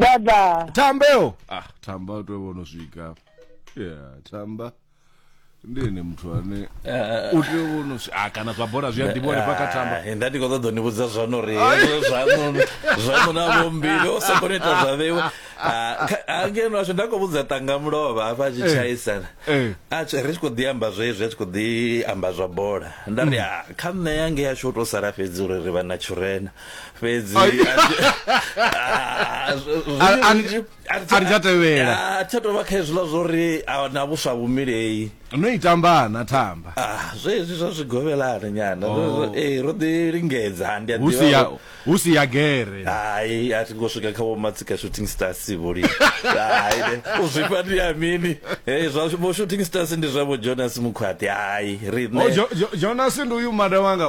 baba tambeo ah tamba u tea u vhono swika yeah tamba ndi ene muthu ane u tea u vhono swi- ah kana zwa bola zwi a ḓivha hanefha kha tamba Ah, nda ndi khou ṱoḓa u ni vhudza zwano uri hezwo zwaṋu zwaṋu na vhombili o soko ni ita zwa vheiwe Ah, kha- ah, ngeno ashu nda khou vhudza tanga mulova hafha a tshi Eh, tshaisana eh. a tshi- ri tshi khou ḓi amba zwezwi a tshi khou ḓi amba zwa bola nda ri "Ah, kha nṋe yange yashu u tou sala fhedzi uri ri vha na tshurena fhedzi a thi- Ah, zwi- zwi- A- a- zwi- a thi- a thi tsha tevhela. Ah, tsha tovha kha hezwiḽa zwo ri ah, na vhuswa vhumilei no i tambana thamba Ah, zwezwi zwa zwi govelana nyana Oh. Zwo- zwo- eh, ro ḓi lingedza ndi a hu si ya ḓivha hu si ya gere hai a thi ngo swika kha vhomatsika shooting stars vholi hai ne, u zwifha ndi ya mini Eh, zwa vho shooting stars ndi zwa vho jonas mukhwaṱi hai O, riṋe Jo- Jo- jonas ndi uyu mada wanga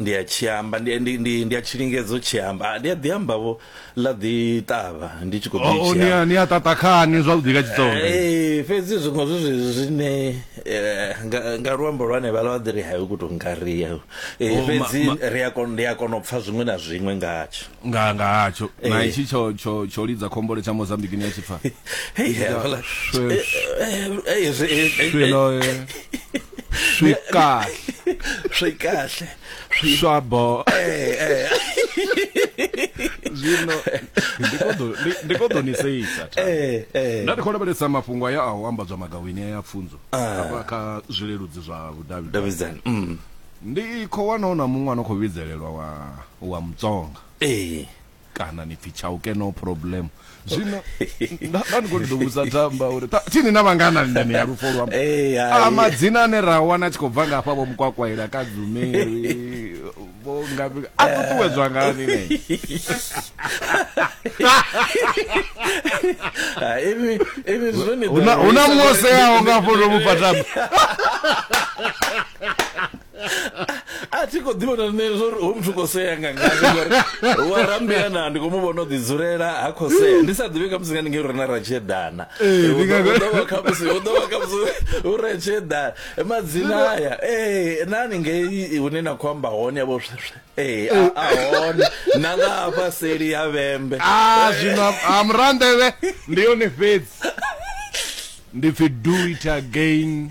ndi a tshi amba ndi ndi ndi ndi a tshi lingedza u tshi amba Ah, ndi a ḓi amba vho ḽa ḓi ṱavha ndi tshi khou ḓi Oh, tshi ni amba. a- ni a ṱaṱa khani zwavhuḓi nga tshitsonga Eh, fhedzi zwiṅwe zwi zwi- zwine eh, nga nga luambo lwa hanevha lwa ḓiri hayo ku tou ngaria Eh, Oh, ma- fhedzi ma- ri a kona ndi a kona u pfha zwiṅwe na zwiṅwe ngatsho nga nga hatsho eh. na itshi tsho tsho tsho lidza khombole tsha Mozambique ni ya tshipfa hey hela hey swilo swika swika swabo eh eh zwino ndi kho ḓo ni seisa eh, eh. nda ndi khou lavhelesa mafhungo aya a u ambadzwa magawini ya pfunzo ah. hafha kha zwileludzi zwa vhudavhidzani mm. Ndi khou wana hu na muṅwe a no khou vhidzelelwa wa, wa Mutsonga. Ee. Kana ni pfi Chauke no problem. Zwino, nda, nda ndi khou ṱoḓa u vhudza Tamba uri, ta, thi ni na vhangana ni ndanea lufo lwa. Ee, A hai. madzina ane ra a wana a tshi khou bva nga hafha vho Mukwakwaila, Kadzumeri, vho ngafhi, a ṱuṱuwedzwa ngani ne? Ha, ivi, ivi zwone. Hu na- hu na Muoseaho nga hafho ndo mu fha Tamba. a thi khou ḓivha na nṋe zwo ri hoyu muthu khou sea nga ngani wa rambea na ndi khou mu vhona o ḓidzulela ha khou sea ndi sa ḓivhi khamusi nga ndi ngei uri na ra tshi eḓana ḓovha khamusi hu ḓovha khamusi hu ra tshi eḓana madzina aya ee na ni ngei hune na khou amba hone yavho sweswe ee a hone na nga hafha seli ya vhembe a zwino a murandevhe ndi yone fhedzi ndi pfi do it again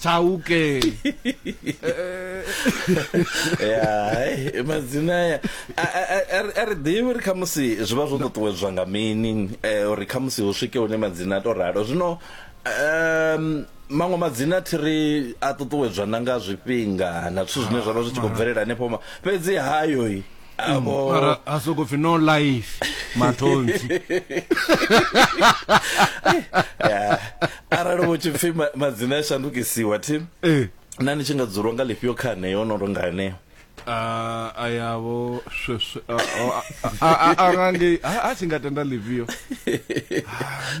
chauke ya madzina aya a ri ḓivhi uri khamusi zwi vha zwo ṱuṱuwedzwa nga mini eh, uri khamusi hu swike hune madzina a to ralo zwino um maṅwe madzina thi ri a ṱuṱuwedzwa na nga zwifhinga na zwithu zwine zwa vha zwi tshi khou bvelela hanefho ma- fhedzi hayo mara a soko pfi no life matonzi arali vho tshi pfi madzina a shandukisiwa tim eh. na ni tshi nga dzulwa nga lifhio kha aneyo no tonga aneyo ah, a yavho sweswe a nga ngei a tshi nga tenda lifhio ah,